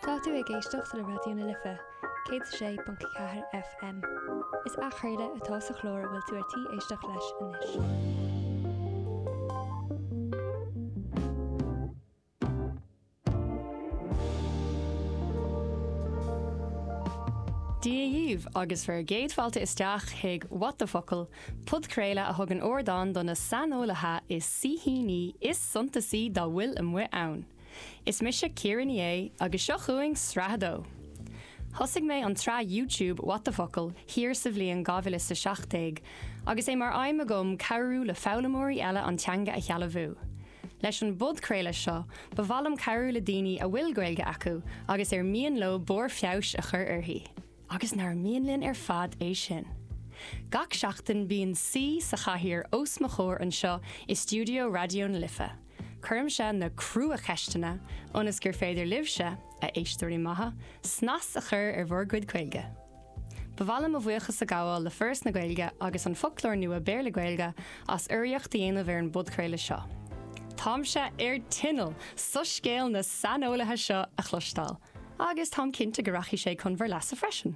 Tá tú ag éisteacht le Raidió na Life, 106.4 FM. Is athchraoladh atá sa chlár a bhfuil tú ar tí éisteacht leis anois. Dia dhaoibh agus bhur gcéad fáilte isteach chuig What the Focal! Podchraoladh a thugann ardán do na saineolaithe is saoithíní is suntasaí dá bhfuil amuigh ann. Is mise Ciara Ní É agus seo chugainn sraith a dó! Thosaigh mé an tsraith YouTube What the Focal? thiar sa bhliain 2017 agus é mar aidhm agam cabhrú le foghlaimeoirí eile an teanga a shealbhú. Leis an bpodchraoladh seo, ba mhaith liom cabhrú le daoine a bhfuil Gaeilge acu agus ar mian leo barr feabhais a chur uirthi. Agus nár mhian linn ar fad é sin! Gach seachtain bíonn saoi sa chathaoir os mo chomhair anseo i stiúideo Raidió na Life. Cuirimse na crua-cheisteanna ionas gur féidir libhse, a éisteoirí maithe, snas a chur ar bhur gcuid Gaeilge. Ba mhaith liom mo bhuíochas a ghabháil le Foras na Gaeilge agus an Foclóir Nua Béarla-Gaeilge as urraíocht a dhéanamh ar an bpodchraoladh seo. Táimse ar tinneall soiscéal na saineolaithe seo a chloisteáil! agus táim cinnte go rachaidh sé chun bhur leasa freisin.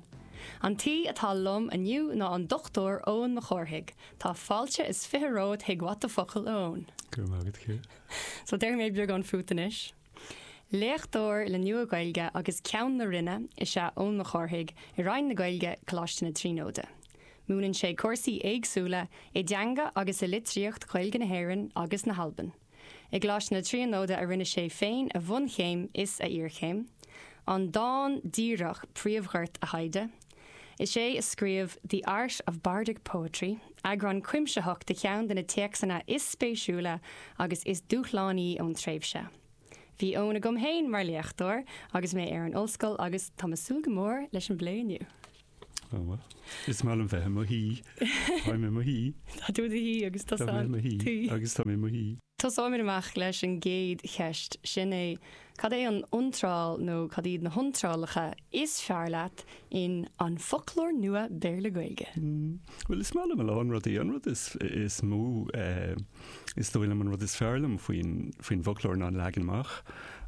An tsaoi atá liom inniu ná an Dr. Eoin Mac Cárthaigh. Tá fáilte is fiche romhat chuig What the Focal, a Eoin. Go raibh maith agat, Ciara. So, déarfaidh mé beagán fút anois. Léachtóir le Nua-Ghaeilge agus Ceann na Roinne is ea Eoin Mac Cárthaigh i Roinn na Gaeilge, Coláiste na Tríonóide. Múineann sé cúrsaí éagsúla i dteanga agus i litríocht Ghaeilge na hÉireann agus na hAlban. I gColáiste na Tríonóide a rinne sé féin a bhunchéim is a iarchéim, an dán díreach príomhghort a thaighde. Is é a scríobh The Art of Bardic Poetry, eagrán cuimsitheach de cheann de na téacsanna is spéisiúla agus is dúshlánaí ón tréimhse. Bhí Eoin agam féin mar léachtóir agus mé ar an ollscoil agus tá mé ag súil go mór leis an bplé inniu. Oh well. Is maith liom bheith i mo shuí. Táim i mo shuí. Tá tú i do shuí agus tá san tuí. Agus táim i mo shuí. Tosóimid amach leis an gcéad cheist, sin é, cad é an iontráil nó cad iad na hiontrálacha is fearr leat in An Foclóir Nua Béarla-Gaeilge? Bhuel, is maith liom a lán rudaí. An rud is mó. Is dóigh liom an rud is fearr liom faoi, faoin bhfoclóir ná an leagan amach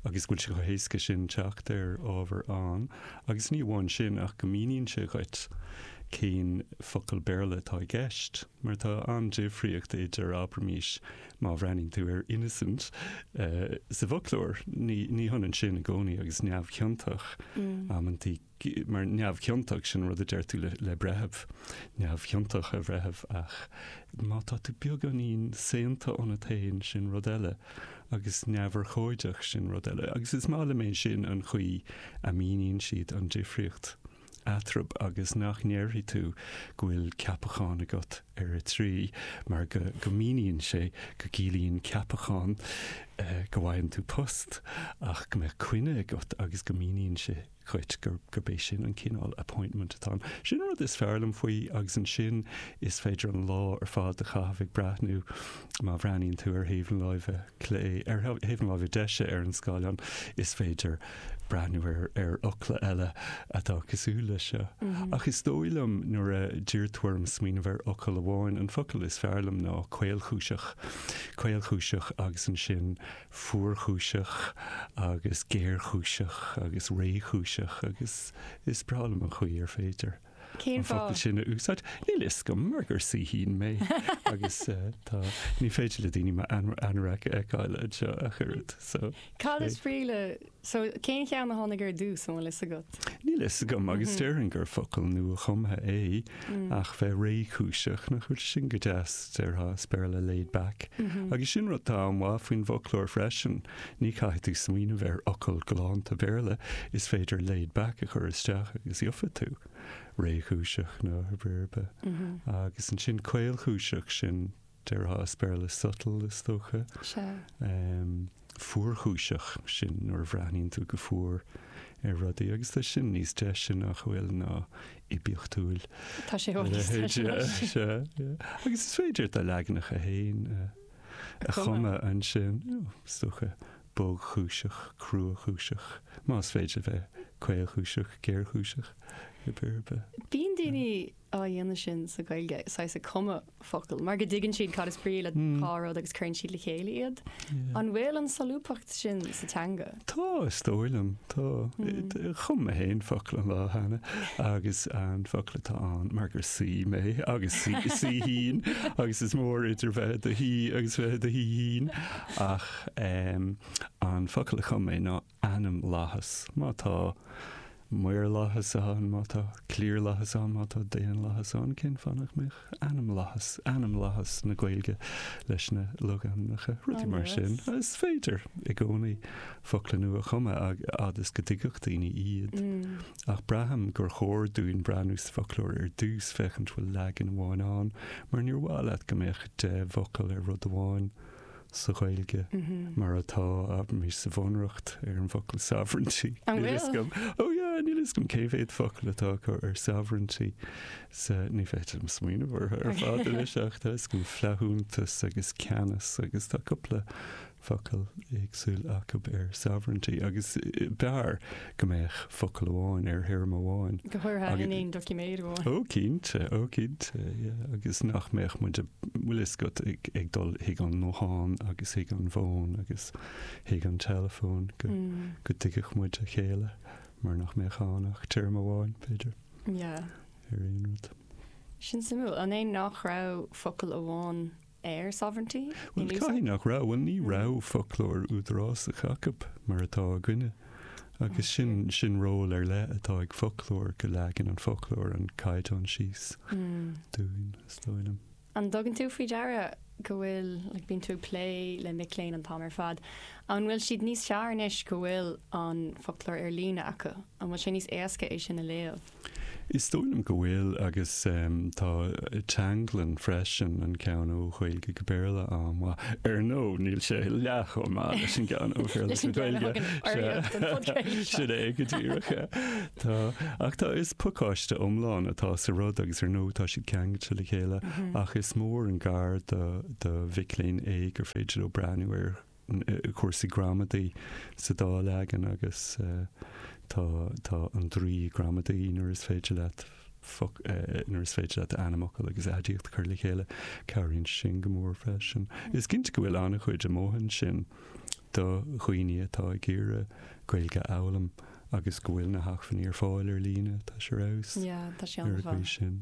agus go bhfuil sé chomh héasca sin teacht ar ábhar ann, agus ní amháin sin ach go míníonn sé dhuit cén focal Béarla atá i gceist, mar tá an-difríocht idir, abraimís, má bhreathnaíonn tú ar 'innocent' sa bhfoclóir, ní hionann sin i gcónaí agus 'neamhchiontach' amantaí. mar neamhchiontach, sin rud a deir tú le breitheamh, neamhchiontach a bhreithimh, ach má tá tú beagáinín, saonta ionat féin, sin rud eile, agus neamhurchóideach, sin rud eile. Agus is maith liom é sin an chaoi a míníonn siad an difríocht eatarthu agus nach ndéarfaidh tú go bhfuil ceapachán agat ar a 3, mar go míníonn sé go gciallaíonn ceapachán go bhfaigheann tú post ach go mbeadh coinne agat agus go míníonn sé dhuit gurb é sin an cineál appointment atá ann. Sin an rud is fearr liom faoi agus ansin is féidir an lá ar fad a chaitheamh ag breathnú má bhreathnaíonn tú ar thaobh na láimhe clé, ar thaobh na láimhe deise ar an scáileán is féidir breathnú ar fhocla eile atá cosúil leis seo. Ach is dóigh liom nuair a d'iarr tú orm smaoineamh ar fhocal amháin, an focal is fearr liom ná caolchúiseach. Caolchúiseach agus ansin. fuarchúiseach agus géarchúiseach agus réchúiseach agus is breá liom an chaoi ar féidir an focal sin a úsáid. Cén fáth? Níl a fhios agam mar gur saoithín mé agus eh, tá, ní féidir le daoine m'anorak a fheiceáil ar an raidió ach oiread so. Cad is brí le So, cén cheann a tháinig ar dtús, an bhfuil a fhios agat? Níl a fhios agam, agus déarfainn gur focal nua-chumtha é, ach bheith réchúiseach, nach bhfuil sin go deas, déarfá, as Béarla laid back. Agus sin rud atá an-mhaith faoin bhfoclóir freisin, ní chaithfidh tú smaoineamh ar fhocal galánta Béarla, is féidir laid back a chur isteach agus gheobhaidh tú réchúiseach nó pé ar bith. Agus ansin caolchúiseach, sin, déarfá, as Béarla subtle, is dócha. Sea. fuarchúiseach sin nuair a bhreathnaíonn tú go fuar ar rudaí, agus tá sin níos deise, nach bhfuil, ná oibiachtúil a leithéid seo. Tá sé i bhfad níos deise leis. Agus is féidir do leaganacha féin a chumadh ansin, you know, is dócha, bogchúiseach, cruachúiseach, más féidir a bheith caolchúiseach, géarchúiseach, pé ar bith. Bíonn daoine á dhéanamh sin sa Ghaeilge, saghas ag cumadh focal, mar go dtuigeann siad cad is brí le dhá rud agus cuireann siad le chéile iad. An bhfuil an solúbthacht sin sa teanga? Tá, is dóigh liom. Tá. Chum mé féin focal an lá cheana agus an focal atá ann, mar gur saoi mé agus saoithín agus is mór idir bheith i do shaoi agus bheith i do shaoithín, ach an focal a chum mé ná ainmlathas, má tá, maorlathas ann, má tá, cliarlathas ann, má tá, daonlathas ann, cén fáth nach mbeadh ainmlathas, ainmlathas na Gaeilge leis na logainmneacha, rudaí mar sin. Is féidir i gcónaí focla nua a chumadh a fhad is go dtuigfeadh daoine iad. Mm. Ach braithim gur chóir dúinn breathnú sa foclóir ar dtús féachaint bhfuil leagan amháin ann, mar níor mhaith leat go mbeadh deich bhfocal ar rud amháin. sa Ghaeilge mar atá, abraimis, sa Bhunreacht ar an bhfocal sovereignty. An bhfuil? Níl fhios agam. Oh yeah, níl fhios agam cé mhéad focal atá acu ar sovereignty sa, ní féidir liom smaoineamh orthu ar fad anois ach tá fhios agam flaithiúnas agus ceannas agus tá cúpla focal éagsúil acu ar sovereignty agus b'fhearr go mbeadh focal amháin ar théarma amháin. Go háirithe in aon doiciméad amháin. Ó cinnte, ó cinnte, yeah, agus nach mbeadh muid ag, bhuel is gan ag dul chuig an nguthán agus chuig an bhfón agus chuig an teileafón go, go dtuigfeadh muid a chéile mar nach mbeadh ann ach téarma amháin, b'fhéidir, ar aon rud. Sin suimiúil, an é nach raibh focal amháin ar sovereignty in úsáid. Caithfidh nach raibh, bhuel ní raibh foclóir údarásach acu mar atá againne agus sin, sin ról ar leith atá ag foclóir, go leagann an foclóir an caighdeán síos dúinn, is dóigh liom. An dtugann tú faoi deara go bhfuil, like bíonn tú ag plé le mic léinn an t-am ar fad, an bhfuil siad níos fearr anois go bhfuil an foclóir ar líne acu, an bhfuil sé níos éasca é sin a léamh? Is dóigh liom go bhfuil agus tá teanglann freisin an ceann ó Ghaeilge go Béarla an-mhaith, ar ndóigh, níl sé leath-chomh maith leis an gceann ó Bhéarla go Gaeilge, sin é go díreach é. Tá, ach tá, is pacáiste iomlán atá sa rud agus ar ndóigh tá siad ceangailte le chéile ach is mór an gar do mhic léinn é gur féidir leo breathnú ar cúrsaí gramadaí sa dá leagan agus tá, tá an draoi gramadaí nuair is féidir leat nuair is féidir leat ainmfhocal agus aidiacht a chur le chéile. Cabhraíonn sin go mór freisin. Is cinnte go bhfuil an-chuid amuigh ansin do dhaoine atá ag iarraidh Gaeilge a fhoghlaim. Agus go bhfuil na hacmhainní ar fáil ar líne, tá sé ar fheabhas ar an gcaoi sin.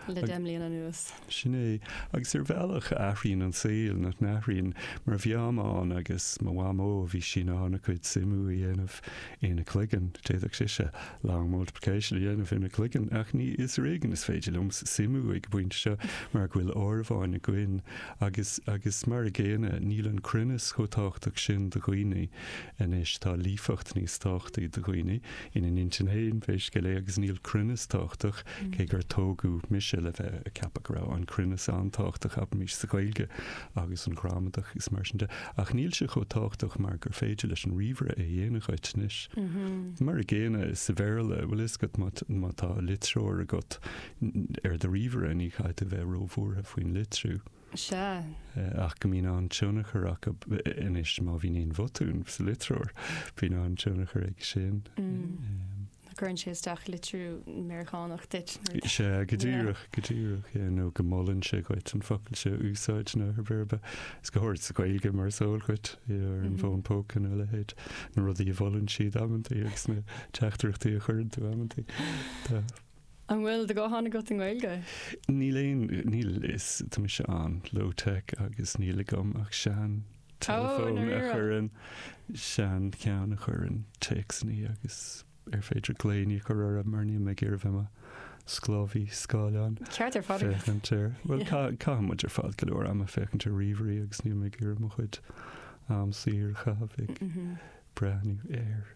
Le deich mbliana anuas. Sin é. Agus ar bhealach athraíonn an saol, nach n-athraíonn, mar bhí Mam agus mo mhamó, bhí sí in ann a cuid suimiú a dhéanamh ina cloigeann, d'fhéadfadh sise long multiplication a dhéanamh ina cloigeann, ach ní, is ar éigean is féidir liomsa suimiú ag an bpointe seo, mar go bhfuil áireamháin againn, agus, agus mar a gcéanna, níl an cruinneas chomh tábhachtach sin do dhaoine. Anois tá líofacht níos tábhachtaí do dhaoine ina n-intinn féin pé scéal é agus níl cruinneas tábhachtach, cé gur tógadh mise le bheith ag ceapadh go raibh an cruinneas an-tábhachtach, abraimis, sa Ghaeilge agus an ghramadach is mar sin de, ach níl sé chomh tábhachtach mar gur féidir leis an ríomhaire é a dhéanamh dhuit anois. Mar a gcéanna sa Bhéarla, bhfuil a fhios agat, má tá litreoir agat ar do ríomhaire ní chaithfidh tú bheith róbhuartha faoin litriú. Sea. ach go mbíonn an-tionchar acu anois má bhíonn aon bhotún sa litreoir, bíonn an-tionchar aige sin. Nó cuireann sé isteach litriú Meiriceánach duit. Sea, go díreach, go díreach. Nó go molann sé dhuit an focal seo a úsáid nó ar bith ar bith. Is go háirid sa Ghaeilge mar is eol dhuit, ar an bhfón póca nó a leithéid, na rudaí a mholann siad amantaí agus na teachtaireachtaí a chuireann tú amantaí. An bhfuil do ghuthán agat i nGaeilge? Níl aon, níl, is, tá mise an, low tech agus níl agam ach sean, teileafón, a chuireann, sean, ceann a chuireann, téacsannaí agus ar féidir glaoiní a chur orthu mar níl mé ag iarraidh a bheith i mo, sclábhaí, scáileáin. Ceart ar fad agat. Féachaint ar, bhuel, ca, caitheann muid ar fad go leor ama féachaint ar ríomhairí agus níl mé ag iarraidh mo chuid, am, saor a chaitheamh ag, breathnú, ar.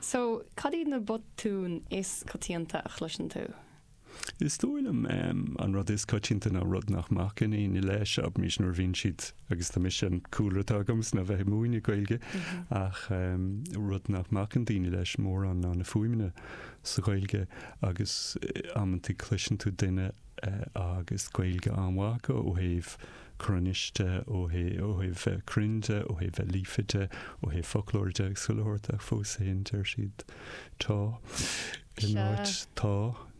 So, cad iad na botúin is coitianta a chloiseann tú? Is dóigh liom an rud is coitianta ná rud nach mbacann daoine leis, abraimis nuair a bhíonn siad, agus tá mise an cúlra atá agamsa ná bheith ag múineadh Gaeilge, ach rud nach mbacann daoine leis mórán ná na fuaimeanna sa Ghaeilge agus amantaí cloiseann tú duine agus Gaeilge an-mhaith acu ó thaobh cruinnis de, ó thaobh a bheith cruinn de, ó thaobh a bheith líofa de, ó thaobh foclóra de, ag súil a thabhairt, ach fós féin deir siad Tá in áit Tá,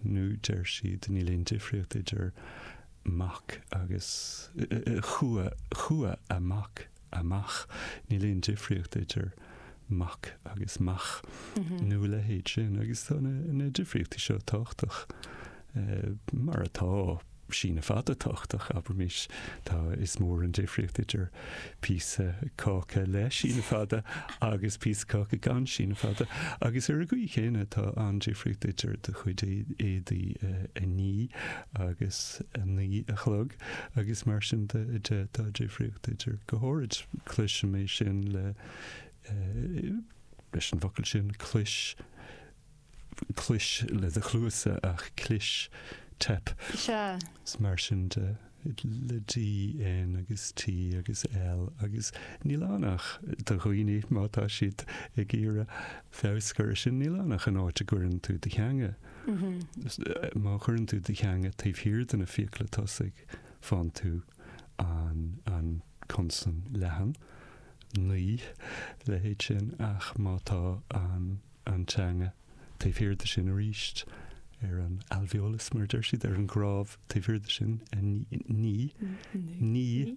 nó deir siad Níl aon difríocht idir mac agus Chuaigh an mac amach. Níl aon difríocht idir mac agus mach nó a leithéid sin agus tá na difríochtaí seo tábhachtach. Mar atá, síneadh fada tábhachtach, abraimis. Tá, is mór an difríocht idir píosa cáca le síneadh fada agus píosa caca gan síneadh fada. Agus ar an gcaoi chéanna, tá an-difríocht idir do chuid éadaí a ní agus a naoi a chlog. agus mar sin de, de, tá difríocht idir, go háirid, cloisim é sin le, leis an bhfocal sin, clois, clois le do chluasa ach clis, teip, Sea. is mar sin de, le D, N agus T agus L agus níl ann ach do dhaoine, má tá siad ag iarraidh feabhas a chur ar sin, níl ann ach an áit a gcuireann tú do theanga. Má chuireann tú do theanga taobh thiar de na fiacla tosaigh, fáann tú an consan leathan, naoi, leithéid sin, ach má tá an teanga taobh thiar de sin arís, ar an alveolus, mar a deir siad, ar an gcrámh taobh thiar de sin, naoi, naoi, naoi,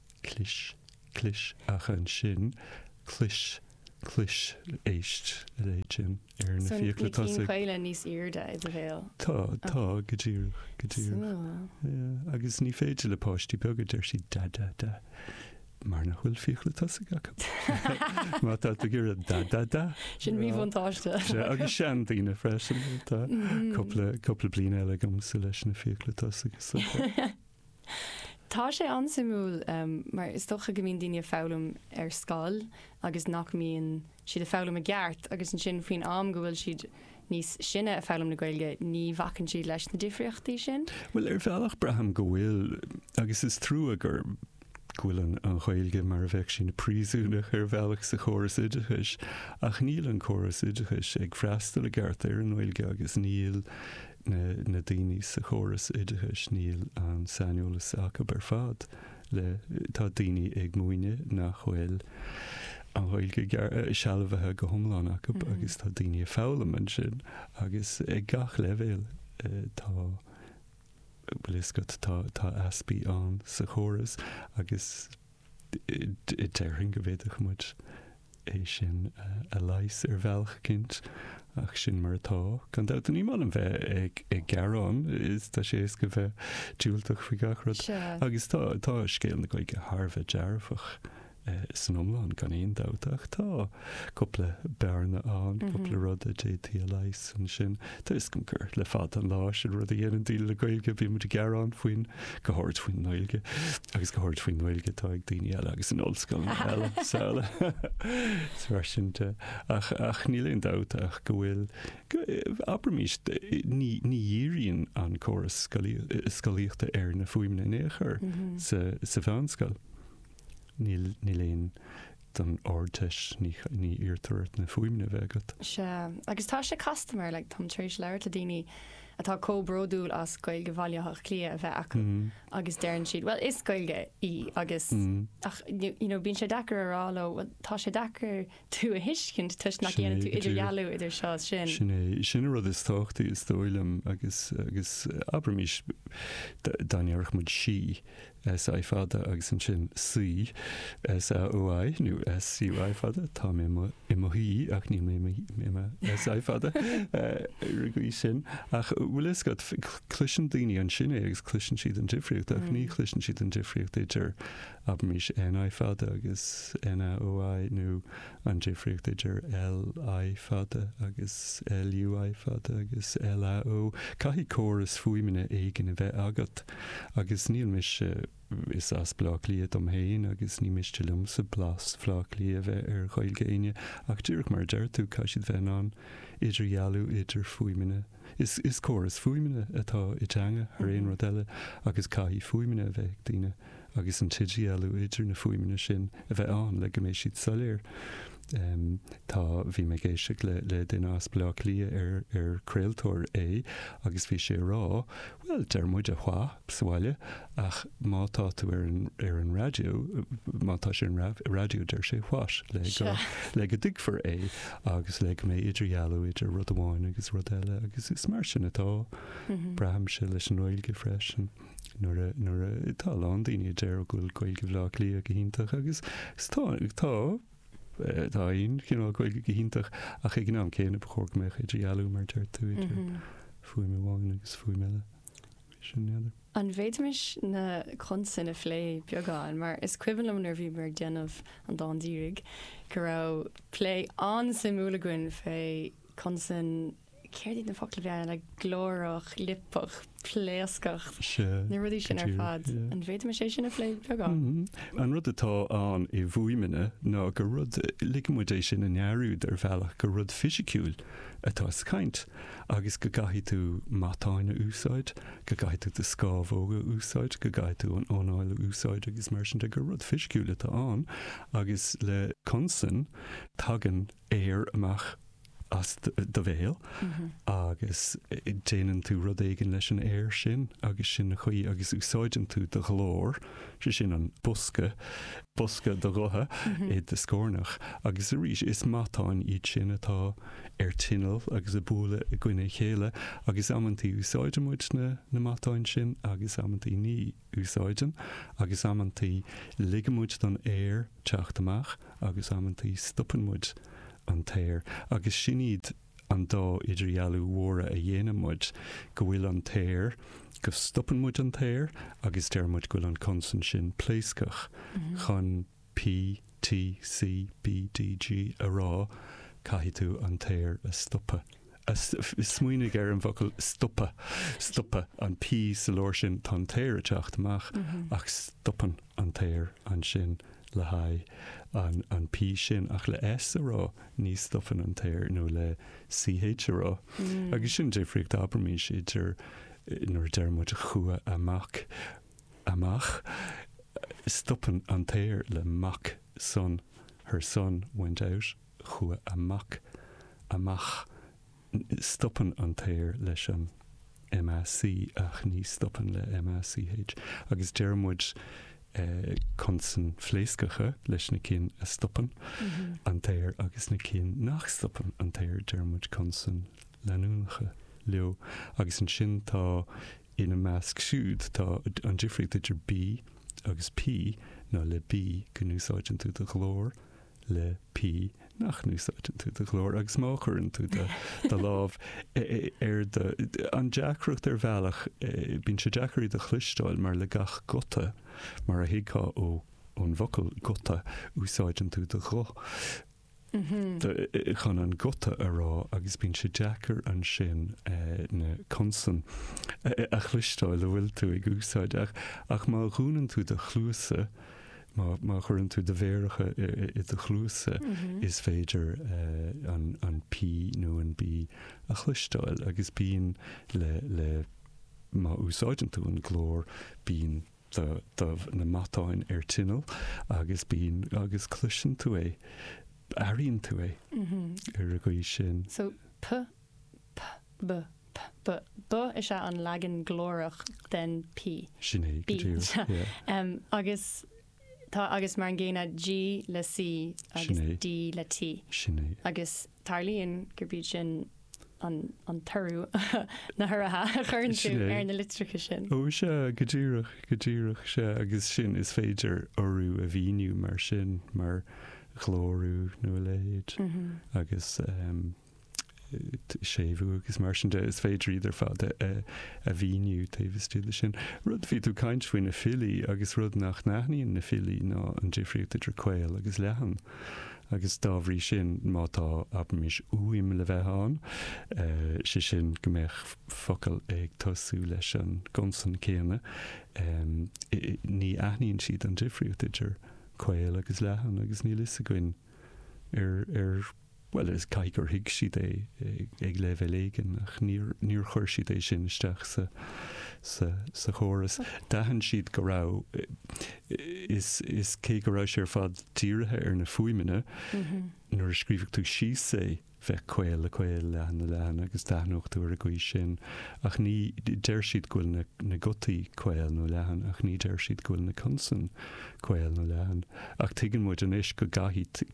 Clis, clis, ach ansin, clis, clis, éist le leithéid sin ar na fiacla tosaigh. So na cinn caola níos airde i do bhéal? Tá, tá, go díreach, go díreach. Súil. Agus ní féidir le páistí beaga, deir sí, da, da, da, mar nach bhfuil fiacla tosaigh acu. Má tá tú ag iarraidh da, da, da. Sin mhíbhuntáiste. Sea, agus seandaoine freisin, tá cupla, cupla bliain eile agamsa leis na fiacla tosaigh. Tá sé an-suimiúil mar is dócha go mbíonn daoine ag foghlaim ar scoil agus nach mbíonn siad ag foghlaim i gceart agus ansin faoin am go bhfuil siad níos sine ag foghlaim na Gaeilge, ní bhacann siad leis na difríochtaí sin. Bhuel, ar bhealach braithim go bhfuil agus is trua gur go bhfuil an Ghaeilge mar a bheadh sí ina príosúnach ar bhealach sa chóras oideachais ach níl an córas oideachais ag freastal i gceart ar an nGaeilge agus níl na daoine sa chóras oideachais níl an saineolas acu ar fad le Tá daoine ag múineadh nach bhfuil an Ghaeilge sealbhaithe go hiomlán acu agus tá daoine ag foghlaim ansin agus ag gach leibhéal tá bhfuil a fhios agat tá tá easpaí ann sa chóras agus Déarfainn go bhféadfadh muid é sin a leigheas ar bhealach eicínt, ach sin mar atá. Gan dabht, ní maith liom a bheith ag gearán, is tá sé éasca bheith diúltach faoi gach rud. Agus tá tá scéal na Gaeilge thar a bheith dearfach san iomlán, gan aon dabht, ach tá. cúpla bearna ann, cúpla rud a d'fhéadfaí a leigheas ansin. Tuigim gur le fada an lá sin an rud a dhéanann daoine le Gaeilge, bíonn muid ag gearán faoin, go háirid faoin nGaeilge, agus go háirid faoin nGaeilge atá ag daoine eile agus in ollscoileanna eile srl. Is mar sin de. Ach, ach níl aon dabht ach go bhfuil, go, abraimís, ní, ní dhíríonn an córas scolaí, scolaíochta ar na fuaimeanna in aon chor sa, sa mheánscoil. Níl, fiú don Ardteist, ní iarrtar ort na fuaimeanna a bheith agat. Sea, agus tá sé casta mar, like, táim tar éis labhairt le daoine atá comh bródúil as Gaeilge Bhaile Átha Cliath a bheith acu agus deireann siad, bhuel, is Gaeilge í agus, ach, you know, bíonn sé deacair a rá leo, bhuel, tá sé deacair tú a thuiscint toisc nach ndéanann tú idirdhealú idir seo is sin. Sin é, sin an rud is tábhachtaí is dóigh liom agus, agus abraimís, dá ndéarfadh muid sí, SI fada agus ansin saoi, SAOI, nó SUI fada, tá mé i mo shuí ach níl mé i mo SUI fada ar an gcaoi sin. Ach an bhfuil a fhios agat, cloiseann daoine ansin é agus cloiseann siad an difríocht ach ní chloiseann siad an difríocht idir abraimis N I fada agus N A O I, nó an difríocht idir L I fada agus L U I fada agus L A O I, caithfidh córas fuaimeanna éigin a bheith agat, agus níl mise, is as Bleá Cliath dom féin agus ní miste liomsa blas Bhleá Cliath a bheith ar Ghaeilge éinne, ach díreach mar a deir tú, caithfidh siad bheith in ann idirdhealú idir fuaimeanna. Is córas fuaimeanna atá i dteanga thar aon rud eile agus caithfidh fuaimeanna a bheith ag daoine agus an t-idirdhealú idir na fuaimeanna sin a bheith ann le go mbeidh siad soiléir. Tá, bhí mé ag éisteacht le duine as Baile Átha Cliath ar ar craoltóir é agus bhí sé ag rá, bhuel deir muid what sa bhaile Ach má tá tú ar an, ar an raidió, má tá sé ar an raib, raidió, deir sé what? le go, Sure. le go dtuigfear é agus le go mbeidh idirdhealú idir rud amháin agus rud eile agus is mar sin atá, braithimse, leis an nGaeilge freisin. Nuair a, nuair a, tá a lán daoine a deir go bhfuil Gaeilge Bhleá Cliath go hiontach agus tá, tá, eh, tá aon chineál Gaeilge go hiontach ach ag an am céanna ba chóir go mbeadh idirdhealú mar deir tú idir fuaim amháin agus fuaim eile. An bhféadfaimis na consain a phlé beagán, mar is cuimhin liom nuair a bhíomar ag déanamh an Dán Díreach go raibh plé an-suimiúil againn fé consain, céard iad na focla a bhí ann, like glórach, liopach, pléascach, na rudaí sin ar fad. An bhféadfaimis é sin a phlé beagán? Mm-hmm. An rud atá ann i bhfuaimeanna ná gur rud, ligfidh muid é sin a ndearúd ar bhealach, gur rud fisiciúil atá sa chaint. agus go gcaithfidh tú matáin a úsáid, go gcaithfidh tú do scámhóga a úsáid, go gcaithfidh tú an anáil a úsáid agus mar sin de, gur rud fisiciúil atá ann agus le consain tagann aer amach as do bhéal agus déanann tú rud éigin leis an aer sin agus sin an chaoi agus úsáideann tú do ghlór. sé sin an bosca, bosca do ghutha i do scornach agus arís is matáin iad sin atá ar tinneall agus ag bualadh i gcoinne a chéile agus amantaí úsáideann muid na na matáin sin agus amantaí ní úsáideann agus amantaí ligeann muid don aer teacht amach agus amantaí stopann muid an t-aer agus sin iad an dá idirdhealú mhóra a dhéanann muid, go bhfuil an t-aer, go stopann muid an t-aer agus deir muid go bhfuil an consan sin pléascach, chun P, T, C, B, D, G a rá, caithfidh tú an t-aer a stopadh. Smaoinigh ar an bhfocal stopadh, stopadh, an P sa lár sin, tá an t-aer ag teacht amach ach stopann an t-aer ansin le haghaidh an P sin, ach le S a rá, ní stopann an t-aer, nó le C H a rá. Agus sin difríocht, abraimis, idir nuair a deir muid chuaigh a mac amach, stopann an t-aer le mac son, her son went out, chuaigh a mac amach. stopann an t-aer leis an M A C ach ní stopann le M A C H, agus deir muid consain phléascacha leis na cinn a stopann an t-aer agus na cinn nach stopann an t-aer deir muid consain leanúnacha leo, agus ansin tá ina measc siúd, tá an difríocht idir B agus P ná le B go n-úsáideann tú do ghlór le P nach n-úsáideann tú do ghlór agus má chuireann tú do do lámh ar do an deacracht ar bhealach bíonn sé deacair iad a chloisteáil mar le gach guta, mar a thuigfeá ó ón bhfocal guta, úsáideann tú do ghuth chun an guta a rá agus bíonn sé deacair ansin na consain a chloisteáil a bhfuil tú ag úsáid, ach má dhúnann tú do chluasa Má chuireann tú do mhéaracha i do chluasa, is féidir an P nó an B a chloisteáil agus bíonn le, má úsáideann tú an glór, bíonn do na matáin ar tinneall agus bíonn, agus cloiseann tú é, airíonn tú é ar an gcaoi sin. So, P P, P, P, B is ea an leagan glórach den P. Sin é, go díreach, yeah. Agus tá agus mar an gcéanna G le C agus D le T. Sin é. Agus tarlaíonn gurb iad sin an toradh na huruithe a chuireann tú ar na litreacha sin. Ó sea, go díreach, go díreach, sea. Agus sin, is féidir urú a mhíniú mar sin, mar ghlórú nó a leithéid. Agus. séimhiú agus mar sin de, is féidir iad ar fad a mhíniú taobh istigh de sin. Rud a bhí tú ag caint faoi na filí agus rud nach n-aithníonn na filí ná an difríocht idir caol agus leathan agus dá bhrí sin má tá abraimis uaim le bheith ann, sé sin go mbeadh focal ag tosú leis an gconsan céanna, ní aithníonn siad an difríocht idir caol agus leathan agus níl a fhios againn ar Bhuel, is caithfidh gur thuig siad é ag leibhéal éigin, ach níor chuir siad é sin isteach sa chóras. D'aithin siad go raibh, is cé go raibh sé ar fad dírithe ar na fuaimeanna, nuair a scríobhfadh tú síos é, bheadh caol le caol, leathan le leathan, agus d'aithneodh tú ar an gcaoi sin, ach ní, deir siad go bhfuil na gutaí caol nó leathan, ach ní deir siad go bhfuil na consain caol nó leathan. Ach tuigeann muid anois go gcaithfidh,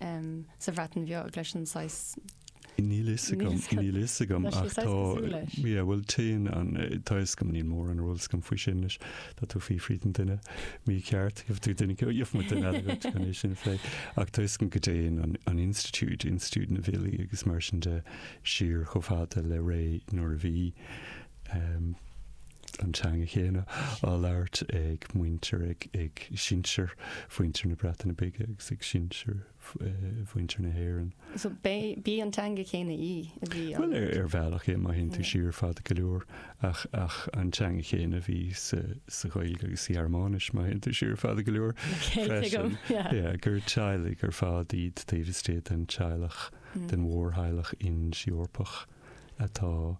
sa Bhreatain Bheag leis an saghas. Níl fhios agam, níl fhios agam. Tá siad saghas cosúil leis. Ach tá, yeah, bhuel, téann an, tá fhios agam, níl mórán ról agam faoi sin leis. Tá tú fiafraí den duine mícheart, gheobhaidh tú duine, gheobhaidh muid duine eile agat chun é sin a phlé. Ach tá fhios agam go dtéann an, an institiúid, institiúid na bhfilí agus mar sin de, siar chomh fada le ré nuair a bhí, an teanga chéanna á labhairt ag muintir, ag sinsir mhuintir na Breataine Bige agus ag sinsir mhuintir na hÉireann. So ab í an teanga chéanna í a bhí á labhairt? Bhuel, ar bhealach é, má théann tú siar fada go leor, ach ach an teanga chéanna a bhí sa sa Ghaeilge agus sa Ghearmáinis, má théann tú siar fada go leor, freisin, yeah, gur teaghlaigh ar fad iad taobh istigh den teaghlach, den mhórtheaghlach Ind-Eorpach atá,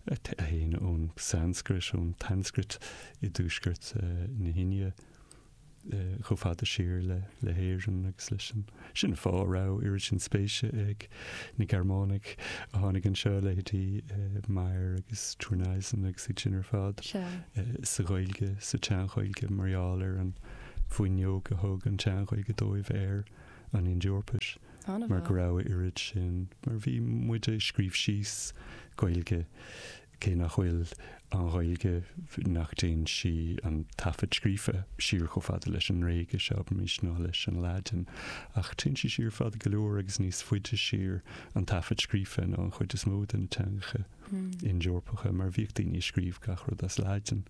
a théann ón tSanscrait, ón tSanscrait i dtuaisceart na hIndia, chomh fada siar le hÉirinn agus leis an. Sin an fáth a raibh oiread sin spéise ag na Gearmánaigh a tháinig anseo, leithéidí Meyer agus Thurneysen agus iad sin ar fad, sa Ghaeilge, sa tSean-Ghaeilge, mar gheall ar an bhfuinneog a thug an tSean-Ghaeilge dóibh ar an Ind-Eorpais. mar go raibh a oiread sin, mar bhí muid ag scríobh síos, Gaeilge, cé nach bhfuil an Ghaeilge, nach dtéann sí, an taifead scríofa, siar chomh fada leis an nGréigis, abraimis, ná leis an Laidin, ach téann sí siar fada go leor agus níos faide siar, an taifead scríofa, ná an chuid is mó de na teangacha Ind-Eorpacha, mar bhíodh daoine ag scríobh gach rud as Laidin,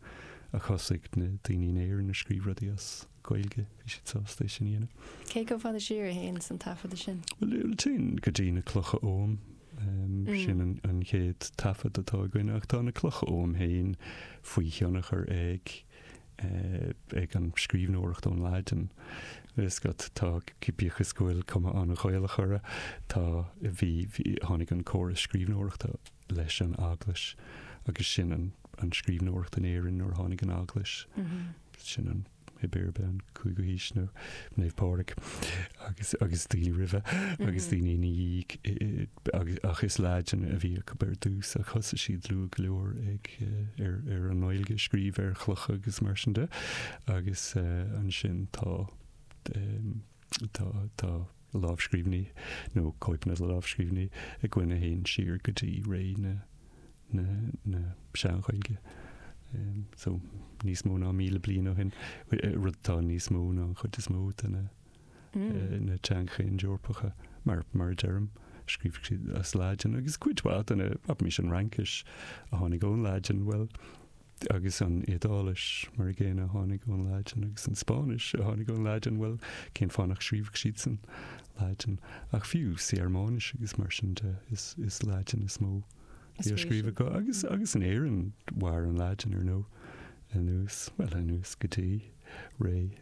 ach thosaigh na daoine in Éirinn ag scríobh rudaí as. Gaeilge, bhí siad sásta é sin a dhéanamh. Cé chomh fada siar a théanns an taifeadadh sin? Bhuel, téann go dtí na clocha oghaim, sin an chéad taifead atá againn, ach tá na clocha oghaim féin faoi thionchar ag eh, an scríbhneoireacht ón Laidin. Is go dtá, bíodh is go bhfuil cuma an-Ghaelach orthu, tá, bhí, tháinig an córas scríbhneoireachta leis an eaglais agus sin an scríbhneoireacht in Éirinn nuair a tháinig an eaglais mm-hmm. sin pé ar bith, an cúigiú haois, nó Naomh Pádraig, agus, agus daoine roimhe, agus daoine ina dhiaidh, agus, ach is Laidin a bhí acu ar dtús, ach thosaigh siad luath go leor ag, ar, ar an nGaeilge, scríobh ar chlocha agus mar sin de, agus ansin tá, tá, tá, lámhscríbhinní, nó cóipeanna de lámhscríbhinní, againn a théann siar go dtí ré na Sean-Ghaeilge, so níos mó ná míle bliain ó shin, rud atá níos mó ná an chuid is mó de na mm. teangacha Ind-Eorpacha, mar a deirim. scríobh siad as Laidin agus cuid de na, abraimis, an Fhraincis a tháinig ón Laidin bhuel Agus an Iodáilis, mar an gcéanna, a tháinig ón Laidin, agus an Spáinnis, a tháinig ón Laidin, bhuel, cén fáth nach scríobhadh siad san Laidin? Ach fiú sa Ghearmáinis agus mar sin de, is Laidin is mó a bhí á scríobh acu. Agus, agus in Éirinn, mhair an Laidin, ar ndóigh, anuas, bhuel, anuas go dtí ré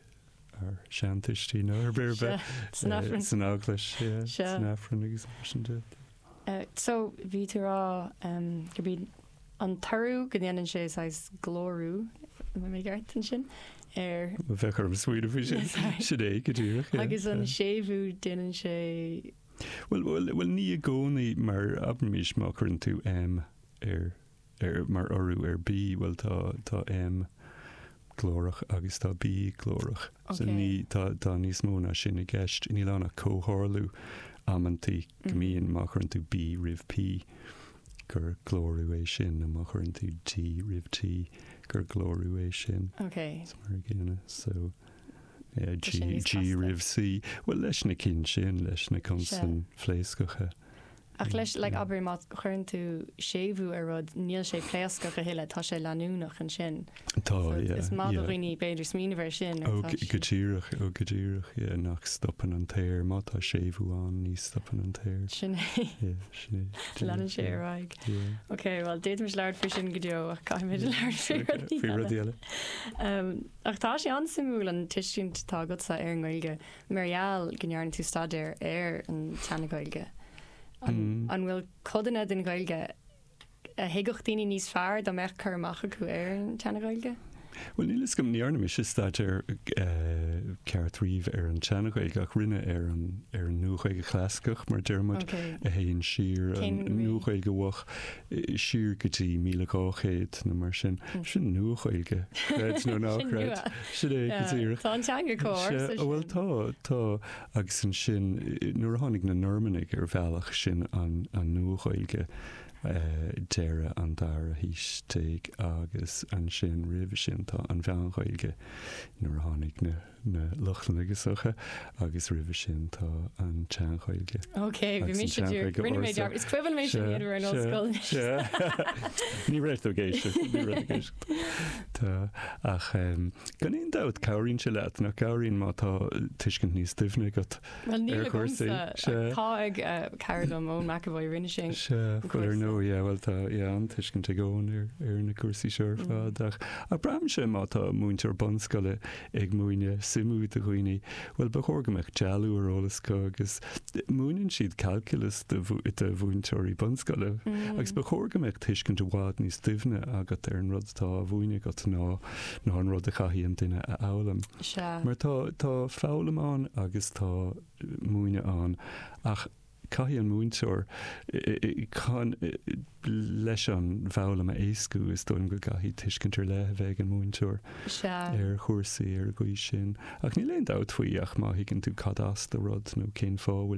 ár seantuistí, nó ar scor ar bith, san Aifreann, san Eaglais, san Aifreann agus mar sin de. So, bhí tú ag rá go mbí an t-urú go ndéanann sé saghas glórú, an mbeidh mé ceart ansin? ar. bheadh orm smaoineamh faoi sin, sin é go díreach. agus an séimhiú, déanann sé. bhuel, bhuel, bhuel, ní i gcónaí, mar abraimis má chuireann tú M ar, ar, mar urú ar B, bhuel, tá, tá M glórach agus tá B glórach, so ní, Ok. tá, tá níos mó ná sin i gceist. Níl ann ach comhtharlú amantaí go mbíonn, má chuireann tú B roimh P, gur glórú é sin, nó má chuireann tú D roimh T, gur glórú é sin. Ok. Is mar an gcéanna. So, yeah, G, G roimh C. Bhuel, leis na cinn sin, leis na consain phléascacha. Ach leis, like, abair, má chuireann tú séimhiú ar rud, níl sé pléascach a thuilleadh, tá sé leanúnach ansin. Tá, yeah. Is maith do dhaoine b'fhéidir smaoineamh air sin. Ó, go díreach, ó, go díreach, yeah, nach stopann an t-aer, má tá séimhiú ann, ní stopann an t-aer. Sin é. Yeah, sin é. Leanann sé ar aghaidh. Yeah. Ok, bhuel, d'fhéadfaimis labhairt faoi sin go deo, ach caithfimid labhairt faoi rud eile. Faoi rud eile. Um, ach tá sé an-suimiúil an tuiscint atá agatsa ar an nGaeilge, mar gheall go ndearna tú staidéar ar an tSeana-Ghaeilge. An, an bhfuil codanna den Ghaeilge a thuigfeadh daoine níos fearr dá mbeadh cur amach acu ar an tSeana-Ghaeilge? Bhuel, níl fhios agam, ní dhearna mise staidéar ceart riamh ar an tSeana-Ghaeilge, ach rinne ar an, ar an Nua-Ghaeilge Chlasaiceach, mar a deir muid, a théann siar, an Nua-Ghaeilge Mhoch, siar go dtí 1200, nó mar sin. Sin Nua-Ghaeilge, creid nó ná creid. Sin é, go díreach. Tá an teanga chomh ársa sin. Bhuel, tá, tá. agus ansin nuair a tháinig na Normannaigh ar bhealach sin an Nua-Ghaeilge deireadh an dara haois déag agus ansin roimhe sin tá an Mheán-Ghaeilge nuair a tháinig na Lochlannaigh go hoíche agus roimhe sin tá an tSean-Ghaeilge Ok, bhí mise ag iarraidh, rinne mé dearmad, is cuimhin mé sin nuair a bhí mé san ollscoil anois. Ní raibh tú ag éisteacht, ní raibh tú ag éisteacht. Tá, ach gan aon dabht, cabhraíonn sé leat, nach gcabhraíonn má tá tuiscint níos doimhne agat ar chúrsaí? Well, níl agamsa. Tá ag cara dom, Eoin McEvoy, rinne sé an cúrsa. Sea, bhuel ar ndóigh, yeah, bhuel tá, yeah, an-tuiscint ag Eoin ar na cúrsaí seo ar fad, ach, ach braitheann sé má tá múinteoir bunscoile ag múineadh suimiú do dhaoine, bhuel, ba chóir go mbeadh dealú ar eolas acu agus múineann siad calculus do mhúinteoirí bunscoile agus ba chóir go mbeadh tuiscint i bhfad níos doimhne agat ar an rud atá á mhúineadh agat ná ná an rud a chaithfidh an duine a fhoghlaim. Mar tá tá foghlaim ann agus tá múineadh ann ach Caithfidh an múinteoir, chun leis an bhfoghlaim a éascú, is dóigh liom go gcaithfidh, tuiscint ar leith a bheith ag an múinteoir ar chúrsaí ar an gcaoi sin. Ach níl aon dabht faoi ach má thuigeann tú cad as do rud nó cén fáth a bhfuil